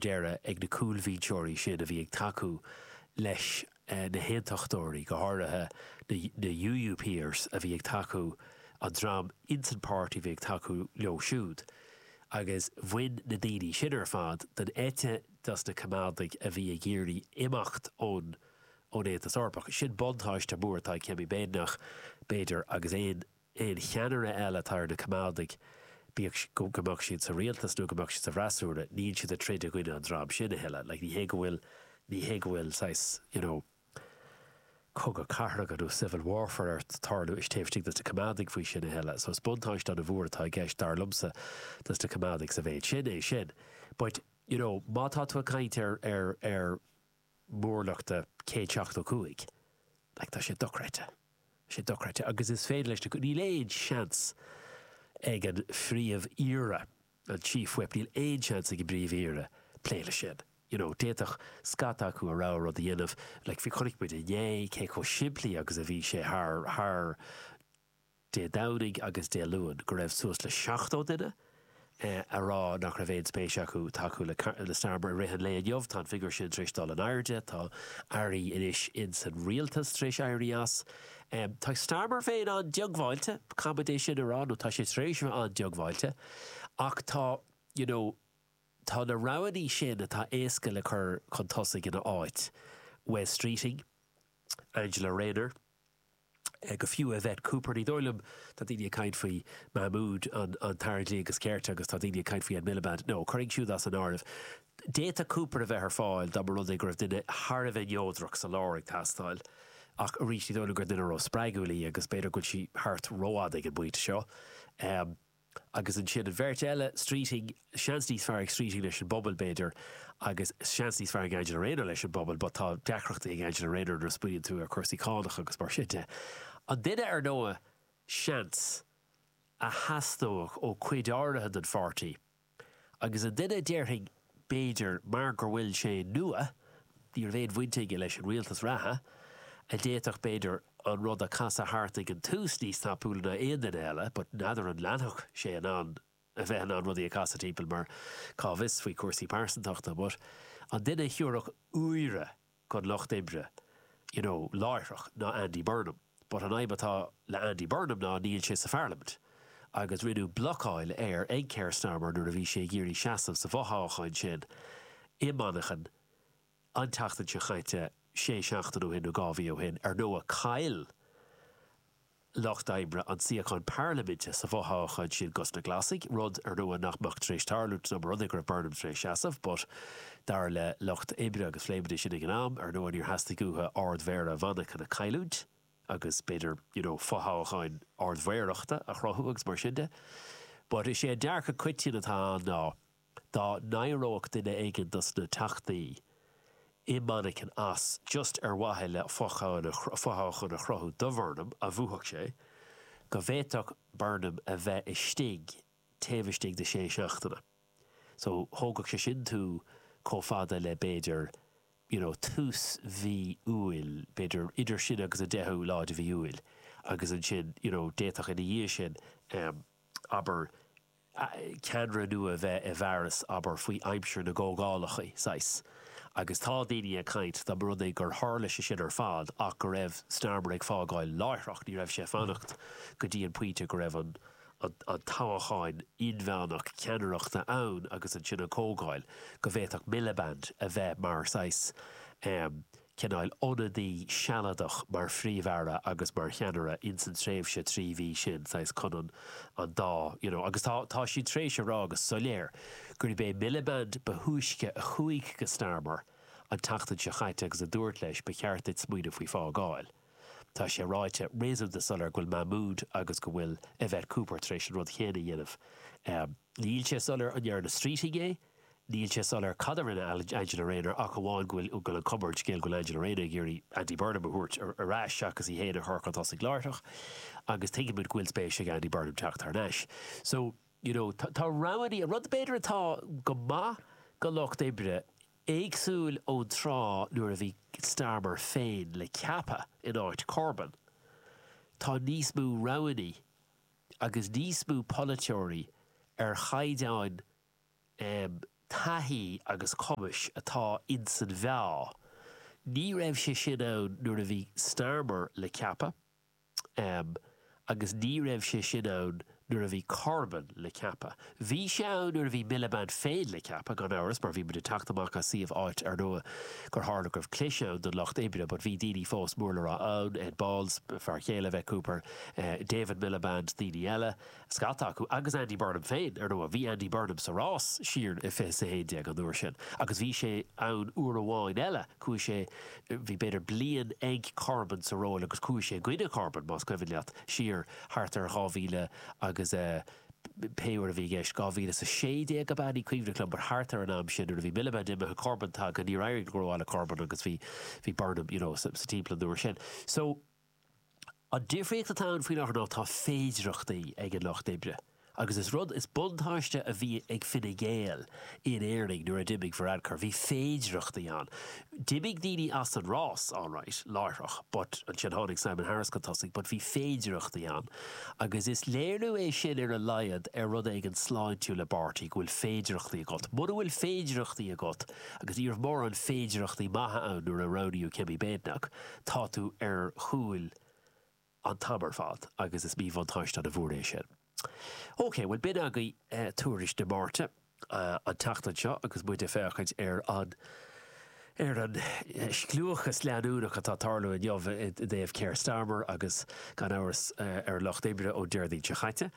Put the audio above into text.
deireadh ag na cúlbhinseoirí sin a bhí ag tacú leis na hAontachtóirí, go háirithe na UUPers a bhí ag tacú, an dream insan páirtí a bhí ag tacú leo siúd. Agus bhain na daoine sin ar fad den eite des na Coimeádaigh a bhí ag iarraidh imeacht ón Aontas Eorpach. Sin buntáiste mór atá ag Kemi Badenoch, b'fhéidir, agus aon aon cheannaire eile atá ar na Coimeádaigh, bíodh go mbeadh siad sa rialtas nó go mbeadh siad sa bhfreasúra, níl siad ag troid i gcoinne an dream sin a thuilleadh. Like, ní hé go bhfuil, ní hé go bhfuil saghas, you know, cogadh cathracha nó civil warfare ar tarlú istigh, taobh istigh des na Coimeádaigh faoi sin a thuilleadh. So is buntáiste ana mhór atá i gceist, dar liomsa, dos na Coimeádaigh sa mhéid sin, é sin. But, you know, má tá tú ag caint ar, ar, ar, móramh de céad seachtó cúig. Like, tá sé dochreidte. Tá sé dochreidte. Agus is féidir leis na, níl aon seans ag an phríomh-aoire, an chief whip, níl aon seans ag an bpríomh-aoire plé leis sin. You know, d'fhéadfadh scata acu a rogha rud a dhéanamh, like, bhí, chonaic muid inné cé chomh simplí agus a bhí sé thar, thar, Dé Domhnaigh agus Dé Luain, go raibh suas le 70 duine a rá nach raibh aon spéis acu tacú le Starmer i rith an lae inniu. Tá an figiúr sin tar éis dul in airde, tá airí anois in san rialtas tar éis éirí as. Tá Starmer féin ana-dhiongbháilte, caithfimid é sin a rá, nó tá sé tar éis a bheith ana-dhiongbháilte, ach tá, you know, tá na roghannaí sin atá éasca le cur chun tosaigh ina áit, Wes Streeting, Angela Rayner. nó fiú Yvette Cooper. Ní dóigh liom. Tá daoine ag caint faoi Mahmood an tAire Dlí agus Cirt agus tá daoine ag caint faoi Ed Miliband. No, cuir iad siúd as an áireamh. D'fhéadfadh Cooper a bheith ar fáil dá mba rud é go raibh duine thar a bheith neodrach sa lár ag teastáil ach arís ní dóigh liom gur duine róspreagúil í agus b'fhéidir go bhfuil sí thart rófhada ag an bpointe seo. Agus ansin an bheirt eile, Streeting, seans níos fearr ag Streeting leis an bpobal, b'fhéidir, agus seans níos fearr ag Angela Rayner leis an bpobal, but tá deacrachtaí ag Angela Rayner nuair a smaoiníonn tú ar chúrsaí cánach agus mar sin de. An duine, ar ndóigh, seans, a theastódh ó cuid áirithe den pháirtí, agus an duine a déarfainn, b'fhéidir mar go bhfuil sé nua, ní raibh aon bhaint aige leis an rialtas reatha, a d'fhéadfadh b'fhéidir an rud a casadh thart ag an tús níos tapúla ná aon duine eile, but n'fheadar an leanfadh sé in ann a bheith in ann rudaí a casadh timpeall mar cá bhfios faoi chúrsaí pearsantachta, but an duine a thiúrfadh úire don Lucht Oibre, you know, láithreach ná Andy Burnham. But an fhadhb atá le Andy Burnham ná níl sé sa pharlaimint, agus rinneadh blocáil air ag Keir Starmer nuair a bhí sé ag iarraidh seasamh sa bhfothoghchán sin i Manchain an tseachtain seo chaite, sé seachtain ó shin nó dhá mhí ó shin, ar ndóigh. Caill. Lucht Oibre an suíochán Parlaiminte sa bhfothoghchán sin go dtí na Glasaigh, rud, ar ndóigh, nach mbeadh tar éis tarlú dá mba rud é go raibh Burnham tar éis seasamh, but dar le Lucht Oibre agus phléimmidne sin ag an am, ar ndóigh, níor theastaigh uathu Ard-Mhéara Mhanchain a chailliúint agus b'fhéidir, you know, fothoghchán Ard-Mhéarachta a chruthú agus mar sin de. But is é an dearcadh coiteann atá ann ná. dá n-éireodh duine éigin dos na teachtaí i Manchain as, just ar mhaithe le fothoghchán a chruthú do Bhurnham, a bhuafadh sé, go bhféadfadh Burnham a bheith istigh taobh istigh de shé seachtaine. So, thógfadh sé sin tú chomh fada le, b'fhéidir, you know, tús mhí Iúil, b'fhéidir idir sin agus an deichiú lá de mhí Iúil agus ansin, you know, d'fhéadfadh ina dhiaidh sin, abair, ceannaire nua bheith i bhfearas, abair, faoi aimsir na gcomhdhálacha, saghas. Agus tá daoine ag caint, dá mba rud é gur tharla sé sin ar fad ach go raibh Starmer ag fágáil láithreach, ní raibh sé ag fanacht go dtí an pointe go raibh an toghchán inmheánach ceannaireachta ann agus ansin an chomhdháil, go bhféadfadh Miliband a bheith mar saghas, cineál ionadaí sealadach mar Phríomh-Aire agus mar cheannaire ins an tréimhse trí mhí sin, saghas chun an an dá you know. Agus tá tá siad tar éis a rá go soiléir gurb é Miliband ba thúisce a chuaigh go Starmer an tseachtain seo chaite agus a dúirt leis ba cheart duit smaoineamh faoi fágáil. Tá sé ráite réasúnta soiléir go bhfuil Mahmood agus go bhfuil Yvette Cooper tar éis an rud chéanna a dhéanamh. Níl sé soiléir an ndearna Streeting é, Níl sé soiléir cad a rinne Angela Rayner ach amháin go bhfuil an cúpla scéal go bhfuil Angela Rayner ag iarraidh Andy Burnham a thabhairt ar ais seachas í féin a chur chun tosaigh láithreach agus tuigeann muid go bhfuil spéis ag Andy Burnham teacht thar n-ais. So, you know, tá roghanna, an rud b'fhéidir atá go maith do Lucht Oibre, éagsúil ón tráth nuair a bhí Starmer féin le ceapadh in áit Corbyn, tá níos mó roghanna agus níos mó polaiteoirí ar chaighdeán taithí agus cumais atá ins an mheá. Ní raibh sé sin ann nuair a bhí Starmer le ceapadh agus ní raibh sé sin ann nuair a bhí Corbyn le ceapadh. Bhí sé ann nuair a bhí Miliband féin le ceapadh, gan amhras, mar bhí muid ag teacht amach as suíomh áit, ar ndóigh, gur tharla go raibh clis ann don Lucht Oibre, but bhí daoine fós mór le rá ann, Ed Balls, fear céile Yvette Cooper, David Miliband, daoine eile. Scata acu agus Andy Burnham féin, ar ndóigh. Bhí Andy Burnham sa rás siar i fiche is a haon déag an uair sin agus bhí sé ann uair amháin eile, chuaigh sé, bhí b'fhéidir bliain ag Corbyn sa ról agus chuaigh sé i gcoinne Corbyn, más cuimhin leat, siar thart ar dhá mhíle agus eh, pé uair a bhí i gceist, dhá mhíle is a sé déag ab ea, ní cuimhin liom, but thart ar an am sin nuair a bhí Miliband imithe, Corbyn tagtha, níor éirigh go rómhaith le Corbyn agus bhí, bhí Burnham, you know, sa timpeall an uair sin. So. An difríocht atá ann faoin láthair ná tá féidireachtaí ag an Lucht Oibre, agus is rud, is buntáiste a bhí ag Fine Gael in Éirinn nuair a d'imigh Varadkar, bhí féidireachtaí ann. D'imigh daoine as an rás, alright, láithreach, but ansin tháinig Simon Harris chun tosaigh, but bhí féidireachtaí ann, agus is léiriú é sin ar a laghad ar rud éigin sláintiúil i bpáirtí, go bhfuil féidireachtaí agat. Muna bhfuil féidireachtaí agat, agus ní raibh mórán féidireachtaí maithe ann nuair a roghnaíodh Kemi Badenoch, Tá tú ar chúl an t-am ar fad agus is míbhuntáiste ana mhór é sin. OK, bhuel b'in agaibh Tuairisc Dé Máirt an tseachtain seo agus muid ag féachaint ar an ar an scliúchas leanúnach atá ag tarlú inniu i dtaobh Keir Starmer agus gan amhras ar an Lucht Oibre ón Déardaoin seo chaite.